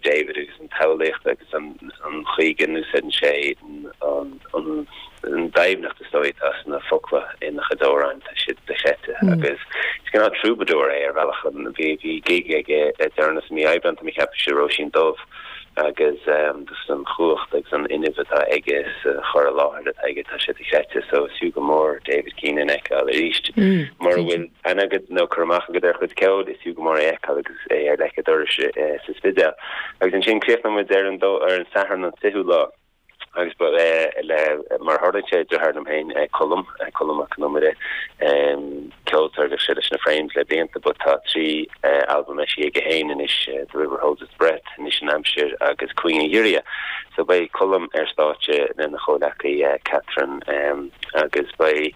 David agus an tsamhlaíocht agus an chaoi go n-úsáideann sé an doimhneacht is dóigh atá sna focla ina chuid amhráin, tá sé dochreidte. Agus is cineál troubadour é ar bhealach a. Bhí gig aige le deireanas i mí Aibreán, tá mé ag ceapadh, sa Róisín Dubh agus just an chumhacht agus an fuinneamh atá aige sa chur i láthair atá aige, tá sé dochreidte. So is fiú go mór David Keenan a fheiceáil arís mara bhfuil aithne agat nó cur amach agat ar a chuid ceoil, is fiú go mór é a fheiceáil agus é ar leic a' dorais sa Spidéal. Agus ansin críochnóidh muid ar an Satharn an 20ú lá agus le, mar a tharlaíonn sé, deartháir liom féin, Colm, Colm Mac Con Iomaire, ceoltóir a bhíodh sé leis na Frames le blianta but tá trí albam eisithe go haonair anois, The River Holds Its Breath Anois an Aimsir agus Cúinne an Ghiorria so beidh Colm ar stáitse lena chomhleacaí Catherine agus beidh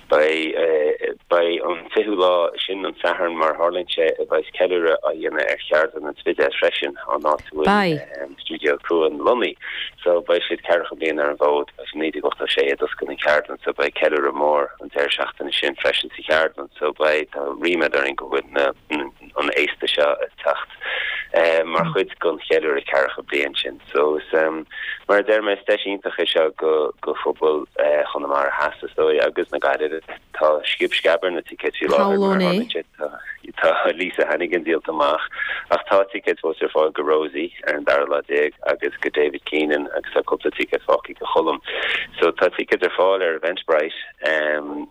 beidh an 20ú lá sin an Satharn mar a tharlaíonn sé a bheas ceiliúradh á dhéanamh ar cheardlann an Spidéil freisin an áit a bhfuil Stiúideo Cuan lonnaithe so beidh siad ceathracha bliain ar an bhfód 1986 a d'oscail an cheardlann so beidh ceiliúradh mór an deireadh seachtaine sin freisin sa cheardlann so beidh tá ríméad orainn go bhfuil na an fhéasta seo ag teacht mar chuid den cheiliúradh ceathracha bliain sin. So mar a deir mé, is deis iontach é seo go phobal Chonamara Theas is dóigh agus na Gaillimhe. Tá sciob sceab ar na ticéid faoi láthair mar a tharlaíonn sé, tá Lisa Hannigan díolta amach ach tá ticéid fós ar fáil go Rosie ar an dara lá déag agus go David Keenan agus tá cúpla ticéad fágtha go Cholm. So tá ticéid ar fáil ar Eventbrite.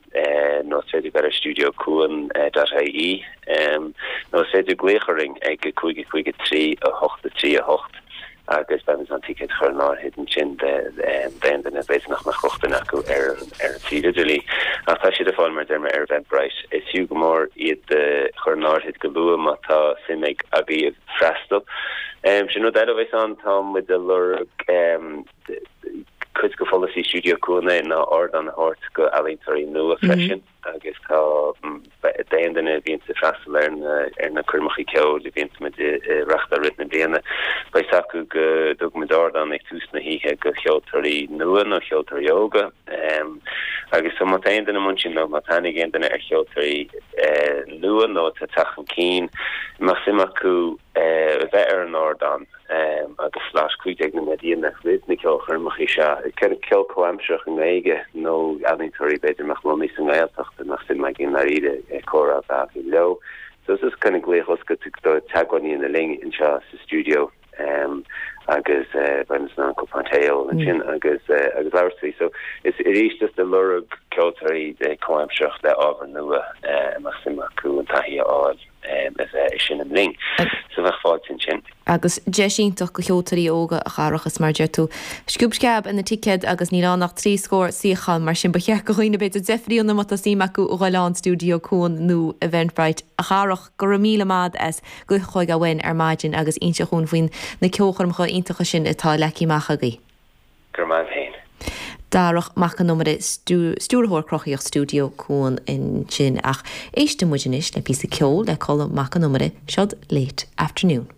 nó is féidir a ghoil ar Stiúideo Cuan dot IE nó is féidir glaoch orainn ag 553 8-3 8 agus beidh muid in ann ticéid a chur in áirithe ansin d'aon duine a b'fhéidir nach mbeadh rochtain acu ar an suíomh idirlín. Ach tá siad ar fáil, mar a deir mé, ar Eventbrite. Is fiú go mór iad a chur in áirithe go luath má tá suim agaibh freastal. Sin rud eile a bheas ann, tá muid a lorg Cuid de pholasaí Stiúideo Cuan é ná ardán a thabhairt go ealaíontóirí nua freisin agus tá d'aon duine a bhíonns ag freastal ar na coirmeacha ceoil a bhíonns muid a reachtáil i rith na bliana, beidh 's acu go dtugann muid ardán ag tús na hoíche go cheoltóirí nua nó cheoltóirí óga agus so má tá aon duine amuigh ansin nó má tá aithne ag aon duine ar cheoltóirí nua nó tá ag teacht chun cinn, a mbeadh suim acu a bheith ar an ardán agus slot cúig nóiméad déag a dhéanamh roimh na ceolchoirmeacha seo. Ceol comhaimsearach i nGaeilge nó ealaíontóirí b'fhéidir atá lonnaithe sa nGaeltacht bheadh suim againn i ndáiríre comhrá a bheith leo so is glaoch oscailte é teagmháil a dhéanamh linn anseo sa stiúideo agus bheimis in ann cupán tae a ól ansin agus agus labhairt faoi so is arís ag lorg ceoltóirí comhaimsearach le ábhar nua a mbeadh suim acu an taithí a fháil. Is é sin an bhlian sa mbeadh fáilte ansin. Agus deis iontach do cheoltóirí óga, a Dharach, is mar a deir tú, sciob sceab ar na ticéid agus níl ann ach trí scór suíochán, mar sin ba cheart do dhaoine, b'fhéidir, deifriú má tá suim acu a ghoil ann, Stiúideo Cuan nó Eventbrite. A Dharach, go raibh míle maith as a ghoil chugainn ar maidin agus inseacht dúinn faoi na ceolchoirmeacha iontacha sin atá leagtha amach agaibh. Go raibh maith agat féin. Darach Mac Con Iomaire, Stiúrthóir Cruthaitheach Stiúideo Cuan ansin ach éistfidh muid anois le píosa ceoil le Colm Mac Con Iomaire, seod Late Afternoon.